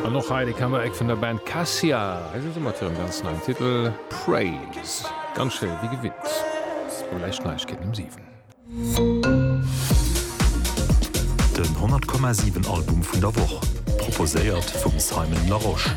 An och hei de Comeback vun der Band Cassia. Hei si se mat hirem ganz neien Titel Praise. Ganz schéi wéi gewinnt. Elo lescht Neiegkeeten um 7. Den 100 Komma 7 Album vun der Woch proposéiert vum Simon Larosche.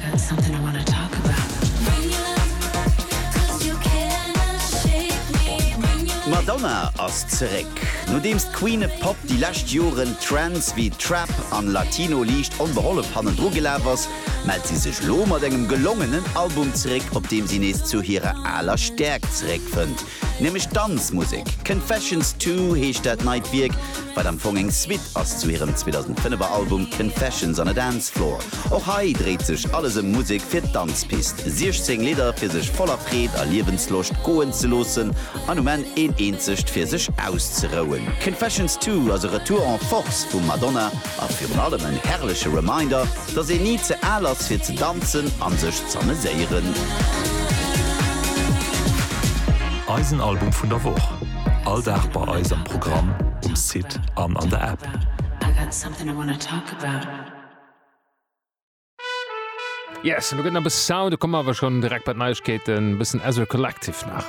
D'Madonna ass zeréck! Nodeems d'Queen et Pop déi lescht Joren Trends wéi Trap an Latino liicht onbehollef hannendru gelaf ass, mellt si sech lo mat engem gelongenen Album zeréck, op deem si nees zu hirer aler Stäerkt zeréckfënnt, nämlech d'Danzmusek. Confessions Two heescht dat neit Wierk, wat am Fong eng Suite ass zu hirem 2005 er Album Confessions on a Dance Floor. Och hei dréit sech alles ëm Musek fir d'Danzpist, 16 Lidder fir sech voller Freed a Liewensloscht goen ze loossen an um Enn een eenzegt fir sech auszerouen. Confessions Two ass e Retour en Force vum Madonna a virun allem en herrleche Reminder, dass een ni ze al ass fir ze danzen an sech z'ameséieren. Eisen Album vun der Woch, all Dag bei eis am Programm, um Site an an der App. Yes, lo gëtt na bis Sound, da kommen awer schon direkt bei d'Neiegkeeten, bëssen Ezra Collective nach.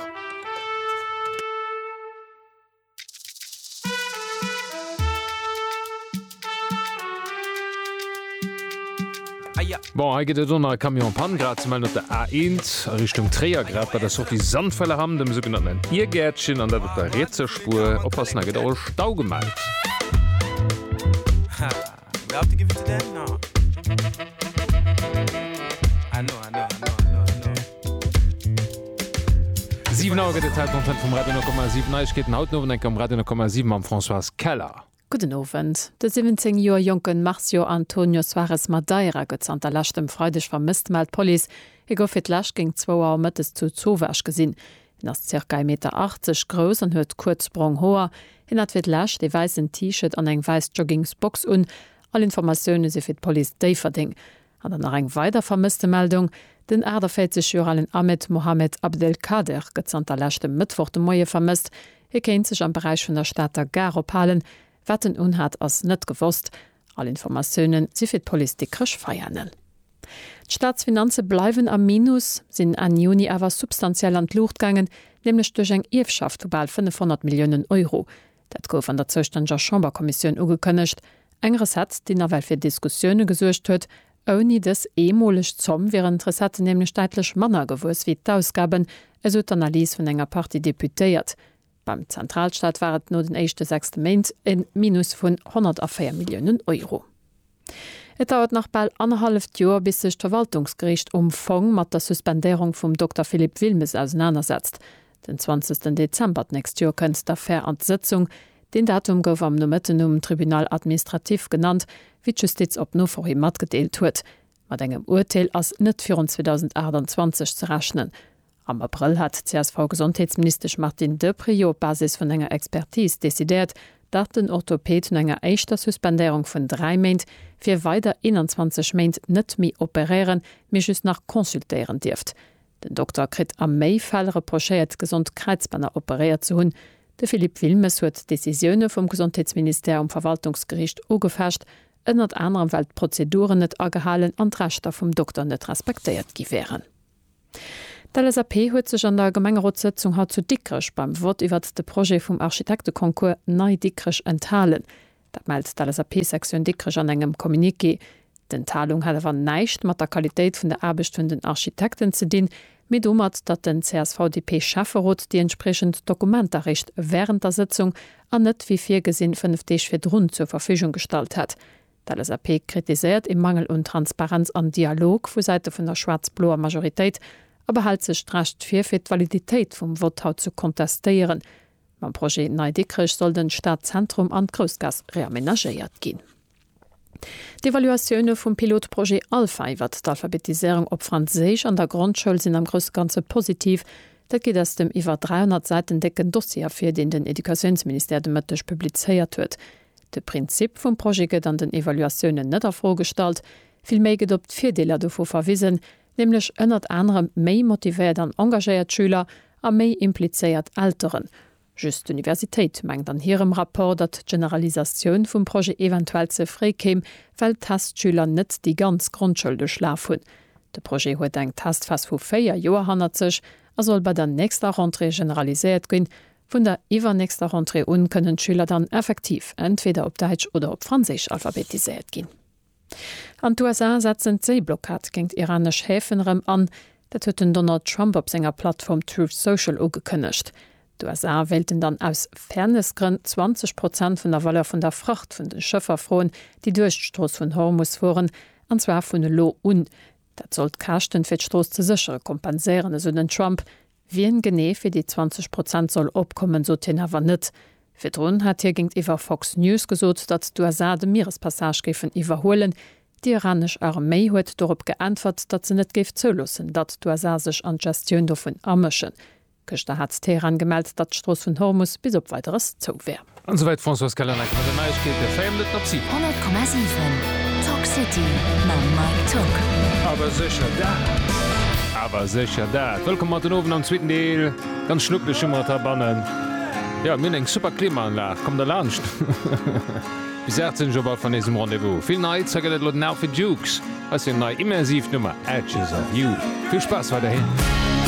Bon, hei gëtt et onnei Camion Pan grad ze mellen op der A1 a Richtung Tréier, grad bei der Sortie Sandfellerham, dem sougenannten Iergäertchen, an dat op der rietser Spur. Oppassen, hei gëtt och e Stau gemellt. Siwen Auer gëtt et Zäit mam Fënn vum Radio 10,7. Neiegkeeten haut den Owend eng Kéier um Radio 10,7 mam Françoise Keller. Gudden Owend. De 17 Joer jonke Marcio Antonio Soares Madeira gëtt zanter leschtem Freideg vermësst, mellt d'Police. Hie gouf fir d'lescht géint zwou Auer mëttes zu Zovach gesinn. Hien ass zirka ee Meter 80 grouss an huet kuerz brong Hoer. Hien hat fir d'lescht ee wäissen T-Shirt an eng wäiss Joggingsbox un. All Informatioune si fir d'Police Déifferdeng. An dann nach eng weider Vermësstemeldung, Den 48 Joer alen Ahmed Mohamed Abdelkader gëtt zanter leschtem Mëttwoch de Moie vermësst. Hie kéint sech am Beräich vun der Stater Gare ophalen. Wat en unhat ass net gewosst. All Informatiounen si fir d'Police Dikrech Veianen. D'Staatsfinanze bleiwen am Minus, sinn Enn Juni awer substantiell an d'Luucht gaangen, nämlech duerch eng Ierfschaft vu bal 500 Milliounen Euro. Dat gouf an der zoustänneger Chamberkommissioun ugekënnegt. Eng Recette, déi nawell fir Diskussioune gesuergt huet. Ouni dës eemoleg Zomm wieren d'Recetten nämlech däitlech manner gewuess wéi d'Ausgaben, esou d'Analys vun enger Partie Deputéiert. Beim Zentralstaat war et no den éischte 6 Méint e Minus vun 104 Milliounen Euro. Et dauert nach bal annerhalleft Joer, bis sech d'Verwaltungsgericht um Fong mat der Suspendéierung vum Dokter Philippe Wilmes ausenanersetzt. Den 20 Dezember d'nächst Joer kënnt d'Affär an d'Sëtzung. Deen Datum gouf am Nomëtten um Tribunal administratif genannt, wéi d'Justiz op Nofro hi matgedeelt huet. Mat engem Urteel ass net virun 2028 ze rechnen. Am Abrëll hat d'CSV-Gesondheetsministesch Martine Deprez jo op Basis vun enger Expertis decidéiert, datt den Orthopäd no enger éischter Suspendéierung vun dräi Méint fir weider 21 Méint net méi operéieren, mee just nach consultéieren dierft. Den Dokter kritt a méi Fäll reprochéiert, gesond Kräizbänner operéiert ze hunn. De Philippe Wilmes huet d'Decisioune vum Gesondheetsministère um Verwaltungsgeriicht ugefecht, ënnert anerem well d'Prozeduren net agehalen an d'Rechter vum Dokter net respektéiert gi wären. D'LSAP huet sech an der Gemengerotssëtzung haut zu Dikrech beim Vott iwwert de Projet vum Architekteconcours Nei Dikrech enthalen. Dat mellt d'LSAP-Sektioun Dikrech an engem Communiqué. D'Enthalung hat awer näischt mat der Qualitéit vun der Aarbecht vun den Architekten ze dinn, Mee domat, datt den CSV-DP-Schäfferot déi entspriechend Dokumenter réischt während der Sëtzung an net wéi virgesinn fënnef Deeg virdrun zur Verfügung gestallt hätt. D'LSAP kritiséiert ee Mangel un Transparenz an Dialog vu Säite vun der schwaarz-bloer Majoritéit a behält sech d'Recht vir, fir d'Validitéit vum Vott haut ze kontestéieren. Mam Projet Nei Dikrech soll den Stadzentrum an d'Groussgaass reamenagéiert ginn. D'Evaluatioune vum Pilotprojet Alpha iwwert d'Alphabetiséierung op Franséisch an der Grondschoul sinn am grousse Ganze positiv. Dat geet aus dem iwwer 300 Säiten décken Dossier ervir, deen den Educatiounsministère de Mëtteg publizéiert huet. De Prinzip vum Projet gëtt an den Evaluatiounen net a Fro gestallt, villméi gëtt op d'Virdeeler dovu verwisen, nämlech ënnert anerem méi motivéiert an engagéiert Schüler a méi implizéiert Elteren. Just d'Universitéit mengt an hirem Rapport, datt d'Generalisatioun vum Projet eventuell ze fréi kéim, well d'Testschüler net déi ganz Grondschoul duerchlaf hunn. De Projet huet eng Testphas vu véier Joer hannert sech a soll bei der nächster Rentrée generaliséiert ginn. Vun der iwwernächster Rentrée un kënnen d'Schüler dann effektiv entweder op Däitsch oder op Franséisch alphabetiséiert ginn. An d'USA setzen d'Séiblockad géint iranesch Häfen erëm an. Dat huet den Donald Trump op senger Plattform Truth Social ugekënnegt. D'USA wéilten dann aus Fairness-Grënn 20 Prozent vun der Valeur vun der Fracht vun de Schëffer froen, déi duerch d'Strooss vun Hormus fueren, an zwar vun elo un. Dat soll d'Käschten, fir d'Strooss ze séchere kompenséieren, esou den Trump. Wien genee fir déi 20 Prozent soll opkommen, sot hien awer net. Virdrun hat hie géintiwwer Fox News gesot, datt d'USA de Mierespassage géifen iwwerhuelen. Déi iranesch Arméi huet dorop geäntwert, datt se net géif zouloossen, datt d'USA sech an d'Gestioun dovun amëschen. Gëschter hat Teheran gemellt, datt d'Strooss vun Hormus bis op Weideres zou wär. An souwäit d'Françoise Callaneck mat de Neiegkeete. Véier Minutten op si. 100,7 Talk City mam Mike Tock. Awer sécher dat! Awer sécher dat! Wëllkomm mat den Owend am zweeten Deel. Ganz schnuckeleg hu mer et heibannen. Jo, mir hunn eng super Klimaanlag. Kommt der laanscht! Bis 18 Auer bal vun eis um Rendez-vous. Vill Neits. Hei gëtt et elo den Alpha Dukes. Hei ass hir nei immersiv Nummer Edges of You. Vill Spaass weiderhin!